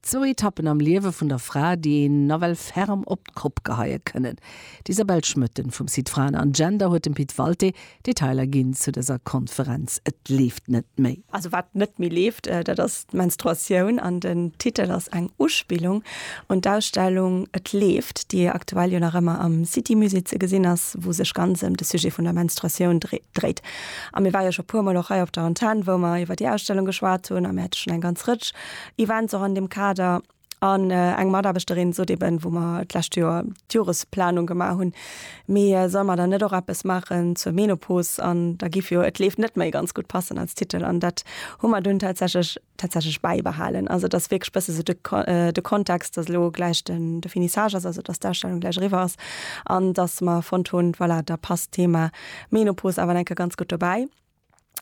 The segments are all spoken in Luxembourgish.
Zwou Etappen am Liewe vun der Fra, déi een nawell ferm op d'Kopp geheie kënnen. D'Isabelle Schmoetten vum Site Fraen an Gender huet dem Pit Walté Detailer ginn zu dëser Konferenz Et leeft net méi. Also wat net méi leeft, dat ass d'Menstruatioun an den Titel ass eng Uspillung un d'Ausstellung Et leeft, déi aktuell jo nach ëmmer am City Musée ze gesinn ass, wou sech ganz ëm de Sujet vun der Menstruatioun dréit. A mir war jo scho puermol och hei op der Antenn, wou mer iwwer déi Ausstellung geschwat hunn, a mir hätte schonn eng ganz Rëtsch Events och an deem Kader. An eng Mataarbechterin sot eben, wou mer d'lescht Joer d'Joresplanung gemaach hunn, mee solle mer dann net och eppes maachen zur Menopos? An da giff jo Et leeft net méi ganz gutt passen als Titel. An dat hu mer dunn tatsächlech tatsächlech bäibehalen. Also et ass wierklech bësse sou de de Kontext, datt elo gläich den de Finissage ass, also datt d'Ausstellung gläich eriwwer ass an datt mer fonnt hunn, voilà, da passt d'Thema Menopos awer nach eng Kéier ganz gutt dobäi.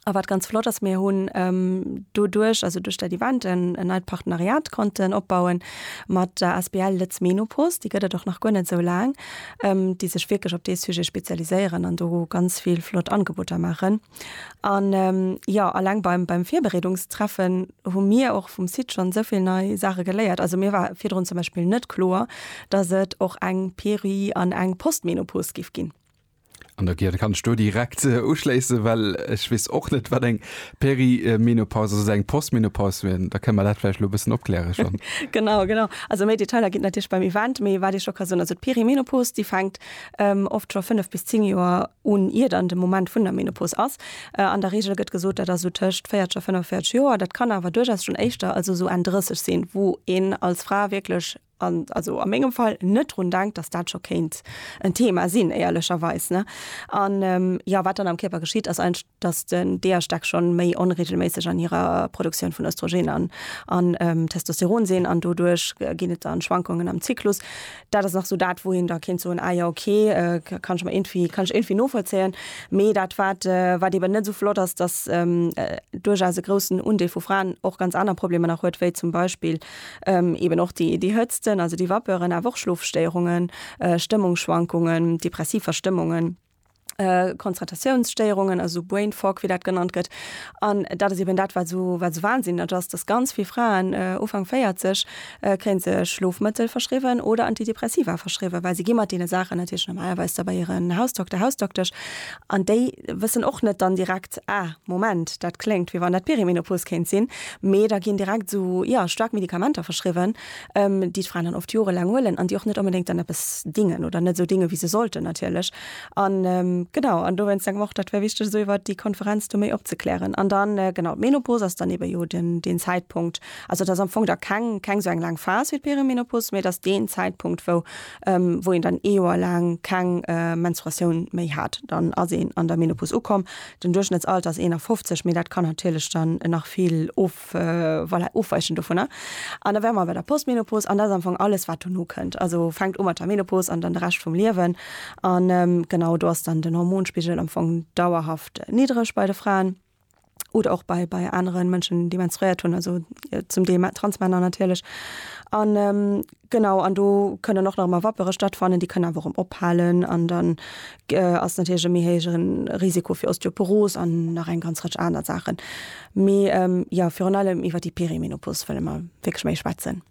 A wat ganz flott ass, mir hunn doduerch, also duerch dat Event, en neit Partenariat konnten opbauen mat der Asbl Lëtz Menopost, déi gëtt et och nach guer net esou laang, déi sech wierklech op dee Sujet spezialiséieren an do ganz vill flott Angeboter maachen. An, jo, alleng beim Virbereedungstreffen hu mir och vum Site schonn esou vill nei Saache geléiert. Also mir war virdrun zum Beispill net kloer, dass et och eng Peri an eng Postmenopost géif ginn. An der Gier kann ech do direkt äh, uschléissen, well ech wees och net wat eng Perimenopaus ass, eng Postmenopaus wien. Da kënne mer dat vläicht lo bëssen opklären schonn. genau, genau. Also méi Detailer ginn et natierlech beim Event, mee wat ech scho ka soen, also d'Perimenopaus déi fänkt ähm, oft scho 5 bis 10 Joer un iert an de Moment vun der Menopaus ass. Äh, an der Regel gëtt gesot, dat ass sou tëscht 40 a 45 Joer. Dat kann awer duerchaus schonn éischter, also sou Enn 30 sinn, wou een als Fra wierklech an also a mengem Fall net drun denkt, dass dat scho kéint en Thema sinn, éierlecherweis, ne? An jo, wat dann am Kierper geschitt, ass eigentlech, dass den d'Eierstäck scho méi onreegelméisseg an hirer Produktioun vun Östrogen an an Testosteron sinn an doduerch ginn et dann Schwankungen am Zyklus. Dat ass nach esou dat, wou een da kéint soen, ah jo, okay, kann ech mer irgendwie, kann ech irgendwie novollzéien. Mee dat, wat, wat eben net esou flott ass, dass duerchaus e groussen Undeel vu Fraen och ganz aner Problemer nach huet, wéi zum Beispill, Eben och déi Hëtzten, also déi Vapeuren, awer och Schlofstéierungen, Stëmmungsschwankungen, depressiv Verstëmmungen, Konzentratiounsstéierungen, also sou Brain Fog, wéi dat genannt gëtt. An dat ass eben dat, wat esou wahnsinneg ass, dass ganz vill Fraen, Ufank 40, kréie se Schlofmëttel verschriwwen oder Antidepressiva verschriwwen, well se gi mat deene Saachen natierlech normalerweis da bei hiren Hausdokter, Hausdoktesch. An déi wëssen och net dann direkt, Ah, Moment, dat kléngt, wéi wann dat d'Perimenopos kéint sinn. Mee da ginn direkt esou, jo, staark Medikamenter verschriwwen, déi d'Fraen dann oft jorelaang huelen an déi och net onbedéngt dann eppes dingen oder net esou dingen, wéi se sollten natierlech. An, genau, an dowéinst denke mer och, dat wär wichteg, esou iwwert déi Konferenz do méi opzeklären. An dann, genau, d'Menopos ass dann eebe jo den, deen Zäitpunkt, also et ass am Fong da keng, keng esou eng laang Phas wéi d'Perimenopos, mee et ass deen Zäitpunkt, wou ähm, wou een dann ee Joer laang keng äh, Menstruatioun méi hat, dann ass een an der Menopause ukomm. Den Duerchschnittsalter ass 51, mee dat kann natierlech dann nach vill of, äh, voilà, ofweichen dovunner. An da wäre mer bei der Postmenopause, an dat ass am Fong alles, wat dono kënnt. Also fänkt u mat der Menopause an dann de Rescht vum Liewen. An ähm, genau do ass dann den Hormonspigel am Fong dauerhaft niddreg bei de Fraen. oder och bei bei aneren Mënschen déi menstruéiert hunn also zum Deel Transmänner natierlech an ähm, genau an do kënnen och nach ëmmer Wappere stattfannen, déi kënnen awer och erëm ophalen an dann äh, ass natierlech e méi héijeren Risiko fir Osteoporos an nach eng ganz Rëtsch aner Saachen. Mee ähm, ja virun allem iwwer déi Perimenopos wëlle mer wierklech méi schwätzen.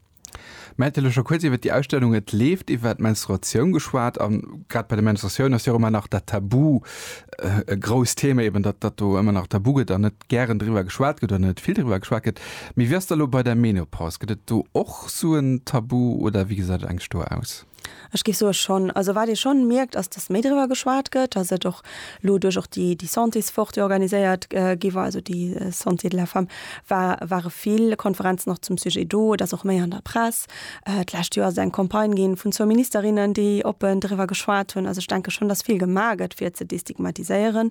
Mä vläicht scho kuerz iwwert déi Ausstellung, Et leeft iwwert d'Menstruatioun geschwat a grad bei der Menstruatioun ass jo och ëmmer nach dat Tabu e grousst Thema, eben datt datt do ëmmer nach tabu gëtt an net gären driwwer geschwat gëtt oder net vill driwwer geschwat gëtt. Mee wéi ass dat elo bei der Menopaus? Gëtt et do och sou en Tabu oder wéi gesäit et eigentlech do aus? Ech géif soe schonn. Also wat ee scho mierkt, ass, datt méi driwwer geschwat gëtt, datt et och elo duerch och déi, déi Santéswoch, déi organiséiert gi war, also déi Santé de la femme, wa ware vill Konferenzen och zum Sujet do. Et ass och méi an der Press. D'lescht Joer ass et eng Campagne ginn vun zwou Ministerinnen, déi oppen driwwer geschwat hunn. Also ech denke schonn, datt vill gemaach gëtt fir ze destigmatiséieren.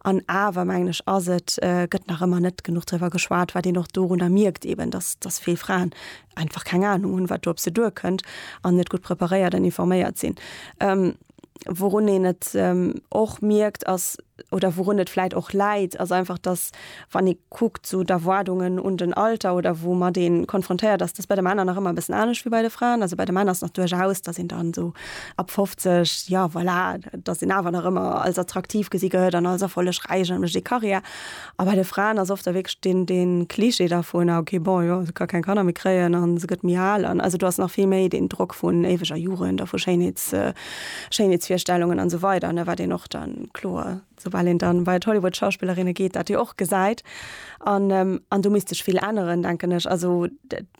An awer mengen ech, ass et, gëtt nach ëmmer net genuch driwwer geschwat, wat een och dorunner mierkt eben, datt, datt vill Fraen einfach keng Ahnung hunn, wat do op se duerkënnt an net gutt preparéiert an informéiert sinn. Ähm, wourun een et ähm, och mierkt ass oder wourun et vläit och läit, ass einfach, dass wann ee kuckt so d'Erwaardungen un den Alter oder woumat ee konfrontéiert ass, dass bei de Männer nach ëmmer e bëssen anescht wéi bei de Fraen. Also bei de Männer ass nach duerchaus, dass een dann esou ab 50, jo voilà, dass een awer nach ëmmer als attraktiv gesi gëtt an als erfollegräich an mécht ee Karriär. A bei de Fraen ass oft da wierklech deen, deen Klischee dervun, ah okay bon, jo se ka keng Kanner méi kréien a se gëtt méi al. An also do ass nach vill méi deen Drock vun éiweger Jugend a vu Schéinheets, Schéinheetsvirstellungen an esou weider, ne, wat een och dann kloer, soubal een dann bei d'Hollywood-Schauspillerinne geet, dat jo och gesäit. An, an do misst sech vill änneren, denken ech. Also.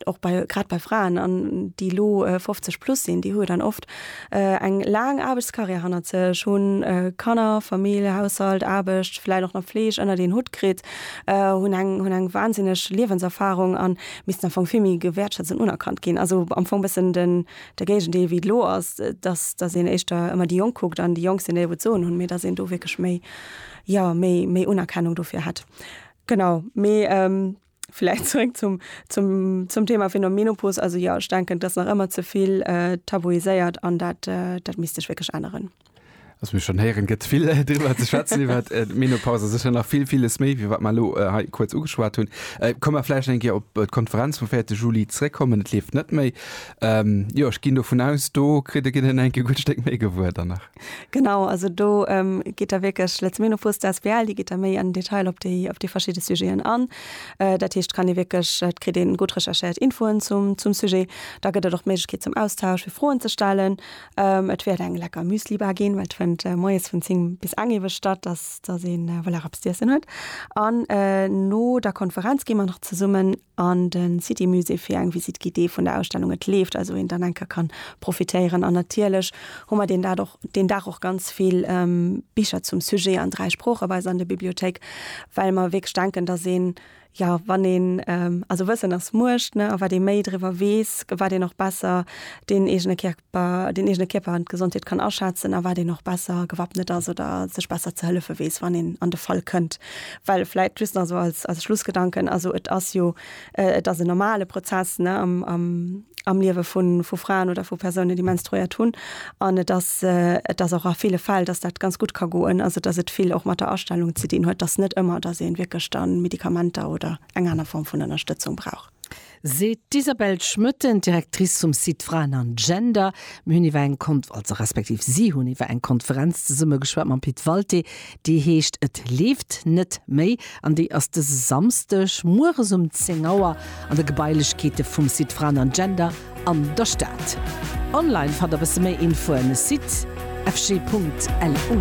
och bei grad bei Fraen an déi elo 50 plus sinn, déi hu dann oft äh, eng laang Aarbechtskarriär hannert sech, hunn äh, Kanner, Famill, Haushalt, Aarbecht, vläit och nach Fleeg ënnert een Hutt kritt, äh, hunn eng hunn eng wahnsinneg Liewenserfahrung an missten am Fong vill méi gewäertschätzt an unerkannt ginn. Also am Fong bëssen den de Géigendeel wéi et elo ass, dass dass een éischter ëmmer déi Jonk kuckt an déi Jonk sinn déi elo d'Soen hunn, mee dass een do wierklech méi ja méi méi Unerkennung dofir hätt. Genau, mee ähm. Vläicht zréck zum, zum, zum Thema fir no Menopos. Also jo, ech denken, et ass nach ëmmer ze vill äh, tabuiséiert an dat, äh, dat misst sech wierklech änneren. Also mir schon héieren, gëtt vill äh, driwwer ze schwätzen iwwer äh, d'Menopause, sécher nach vill villes méi, wéi wat mer elo äh, hei kuerz ugeschwat hunn. Äh, Komm mer vläicht eng Kéier op äh, d'Konferenz vum 4. Juli zréckkommen, et leeft net méi. Ähm, jo, ech ginn dovun aus, do kritt e Ginn en enke gutt Stéck méi gewuer dann nach. Genau, also do ähm, geet der wierklech Lezminofus der SBL, déi geet der méi an Detail op déi op déi verschidde Sujeten an. Äh, dat heescht kann ee wierklech et kritt een gutt recherchéiert Infoen zum zum Sujet. Da gëtt et och d'Méiglechkeet zum Austausch fir Froen ze stellen. Ähm, et wäert eng lecker Müslibar ginn, well et fënnt äh, moies vun 10 bis eng ewech statt, dass dass een äh, voilà, eppes z'iessen huet. An äh, no der Konferenz gi mer nach zesummen an de City Musée fir eng Visite guidée vun der Ausstellung Et leeft, also een dann enker kann profitéieren an natierlech hu mer deen dat och deen Dag och ganz vill Bicher zum Sujet an dräi Sprooche bei eis an der Bibliothéik, well mer wierklech denken, dass een jo wann een also Wëssen ass Muecht, ne, a wat ee méi driwwer weess, wat een och besser deen eegene Kär. den eegene Kierper an d'Gesondheet kann aschätzen a wat een och besser gewappnet ass oder sech besser ze hëllefe weess, wann een an de Fall kënnt. Well vläit just nach esou als Schlussgedanken, also et ass jo, et ass en normale Prozess am Liewe vu Fraen oder vu Persounen, déi menstruéiert hunn an et ass, et ass och a ville Fäll, datt dat ganz gutt ka goen, also datt et vill och mat der Astellung ze dinn huet, datt net ëmmer, datt ee wierklech da Medikamenter oder eng aner Form vun Ënnerstëtzung brauch. seet d'Isabelle Schmoetten, Directrice vum Site Fraen an Gender. Mir hunn iwwer eng Konf also respektiv si hunn iwwer eng Konferenz zesumme geschwat mam Pit Walté, déi heescht Et leeft net méi an déi ass dëse Samsdeg mueres um 10 Auer an de Gebailechkeete vum Site Fraen an Gender an der Stad. Online fannt der bësse méi Infoen, site fg.lu.